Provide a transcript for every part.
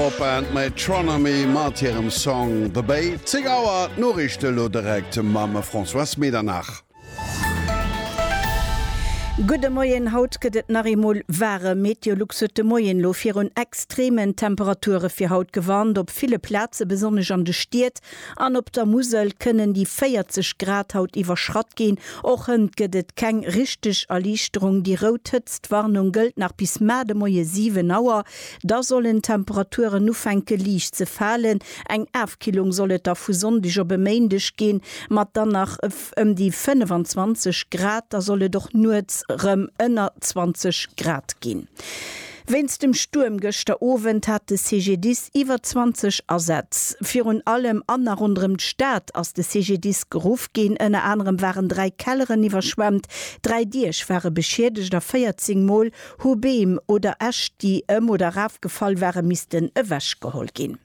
Popband Metronomy mat hirem Song The Bay. 10 Auer, d'Noriichte elo direkt mam Françoise Medernach. Gudde Moien, haut gëtt et nach eemol waarem. Meteolux huet de Moien elo virun extremen Temperature fir haut gewarnt. Op ville Plaze besonnesch an de Stied an op der Musel kënnen déi 40 Grad haut iwwerschratt ginn. Och hënt gëtt et keng richteg Erliichterung. Déi rout Hëtztwarnung gëllt nach bis mar de Moie 7 Auer. Da sollen d'Temperaturen ufänke liicht ze falen. Eng Afkillung soll et da vu Sonndeg op e Méindeg ginn, mat dann nach ëm déi 25 Grad. Da soll et och nuets erëm ënner 20 Grad ginn. Wéinst dem Stuerm gëschter Owend hat de CGDIS iwwer 20 Asätz. Virun allem an a ronderëm d'Stad ass de CGDIS geruff ginn. Ënner anerem waren dräi Kelleren iwwerschwemmt, dräi Diech ware beschiedegt a 14 Mol Hu Beem oder Äscht, déi ëm oder eraf gefall ware missten ewechgeholl ginn.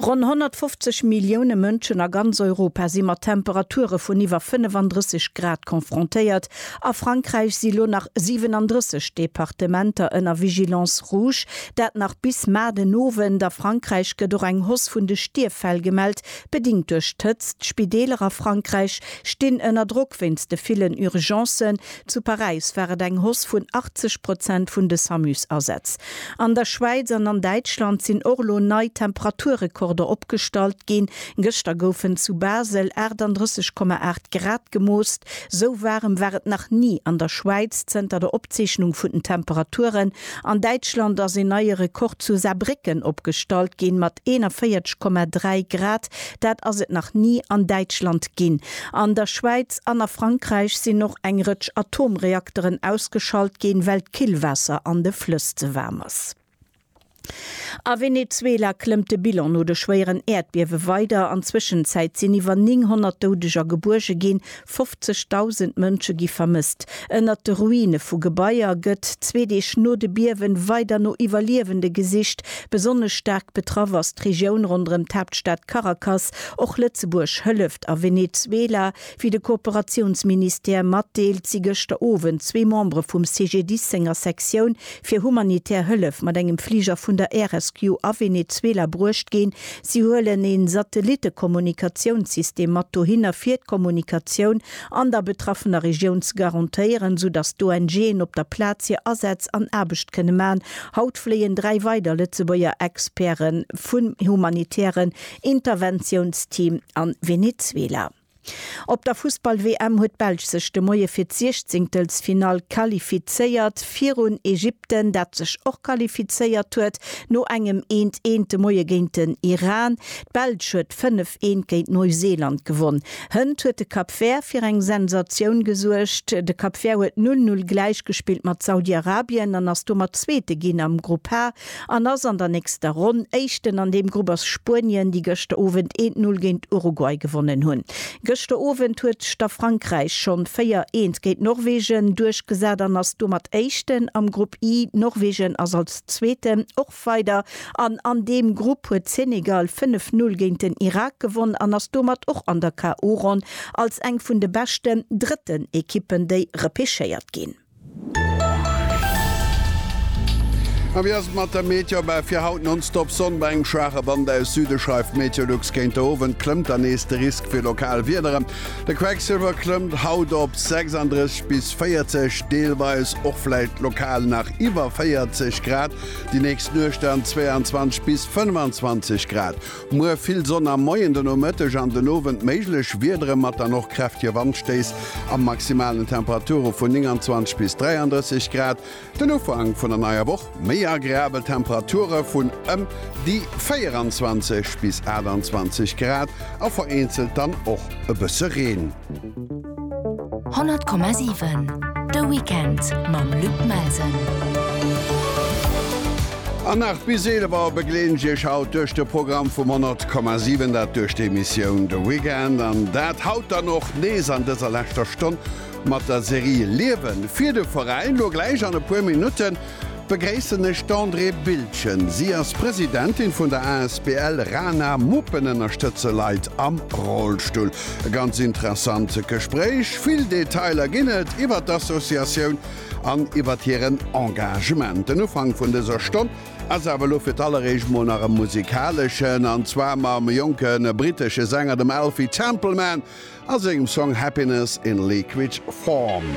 Ronn 150 Millioune Mënschen a ganz Europa si mat Temperature vun iwwer 35 Grad confrontéiert. A Frankräich si lo nach 37 Departementer ënner Vigilance rouge, dat nach bis mar den Owend. A Frankräich gëtt och eng Hoss vun de Stierffäll gemellt, bedingt duerch d'Hëtzt. D'Spideeler a Frankräich stinn ënner Drock wéinst de villen Urgencen. Zu Paräis war et eng Hausse vun 80 Prozent vun de SAMU-Asätz. An der Schwäiz an an Däitschland sinn och elo nei Temperaturrekorder opgestallt ginn. Gëschter goufen zu Basel 38,8 Grad gemoost. Esou waarem war et nach ni an der Schwäiz zënter der Opzeechnung vun den Temperaturen. An Däitschland ass een neie Rekord zu Saarbrécken opgestallt ginn, mat 41,3 Grad. Dat ass et nach ni an Däitschland ginn. An der Schwäiz an a Frankräich sinn och eng Rëtsch Atomreakteren ausgeschalt ginn, well d'Killwaasser an de Flëss ze waarm ass. A Venezuela klëmmt de Bilan no de schwéieren Äerdbiewe weider. An Zwëschenzäit sinn iwwer 900 Doudeger gebuerge ginn, 50.000 Mënsche gi vermësst. Ënnert de Ruine vu Gebaier gëtt zwee Deeg no de Biewen weider no Iwwerliewende gesicht. Besonnesch staark betraff ass d'Regioun ronderëm d'Haaptstad Caracas. Och Lëtzebuerg hëlleft. A Venezuela, wéi de Kooperatiounsministère matdeelt, si gëschter Owend zwee Membere vum CGDIS senger Sektioun fir humanitär Hëllef mat engem Fliger vun der Air Rescue a Venezuela bruecht ginn. Si huelen ee Satellitte-Kommunikatiounssystem mat dohinner, fir d'Kommunikatioun an der betraffener Regioun ze garantéieren, sou datt d'ONGen op der Plaz hir Asätz an Aarbecht kënne man. Haut fléien dräi weider Lëtzebuerger Experte vum humanitären Interventiounsteam a Venezuela. Op der Fussball-WM huet d'Belsch sech de Moie fir d'Siechzéngtelsfinall qualifizéiert, virun Ägypten, dat sech och qualifizéiert huet no engem eent eent de Moie géint den Iran. D'Belsch huet fënnef eent géint Neuseeland gewonn. Hënt huet de Cap Vert fir eng Sensatioun gesuergt. De Cap Vert huet null null gläichgespillt mat Saudi-Arabien an ass domat Zweete ginn am Grupp H. an ass an der nächster Ronn Éischten. An deem Grupp ass Spuenien, déi gëschter Owend een Null géint Uruguay gewonnen hunn. Gëschter Owend huet schter Frankräich schonn véier eent géint Norwegen duerchgesat an ass domat Éischten am Grupp I. Norwegen ass als Zweeten och weider an an deem Grupp huet Senegal fënnef Null géint den Irak gewonn an ass domat och an der KO-Ronn als eng vun de beschten drëtten Ekippen, déi repechéiert ginn. A wéi ass et mat der Meteor? Bah, fir haut nonstop Sonn bei engem schwaache Wand aus Süde, schreift Meteolux. Géint de Owend klëmmt dann nees de Risk fir lokal Wiederen. De Quecksilwer klëmmt haut op 36 bis 40, deelweis och vläicht lokal nach iwwer 40 Grad. Déi nächst Nuecht dann 22 bis 25 Grad. Muer vill Sonn am Moien, de Nomëtteg an den Owend méiglech Wiedere mat dann och kräftege Wandstéiss a maximalen Temperature vun 29 bis 33 Grad. Den Ufank vun der neier Woch, méi agreabel Temperature vun ëm déi 24 bis 28 Grad a vereenzelt dann och e bësse Reen. 100,7 De Weekend mam Luc Melsen. An nach bis 11 Auer begleeden ech Iech haut duerch de Programm vum 100,7, dat duerch d'Emissioun De Weekend an dat haut dann och nees an dëser leschter Stonn mat der Serie Liewen fir de Veräin. Lo gläich an e puer Minutten Begréissen ech d'Andrée Bildgen. Si ass Presidentin vun der asbl Rana Muppen ënnerstëtze Leit am Rollstull. E ganz interessant Gespréich. Vill Detailer ginn et iwwert d'Associatioun an iwwert hiren Engagement. Den Ufank vun dëser Stonn ass awer elo fir d'alleréischt mol nach e musikaleschen, an zwar mam jonke brittesche Sänger, dem Alfie Templeman a sengem Song Happiness in Liquid Form.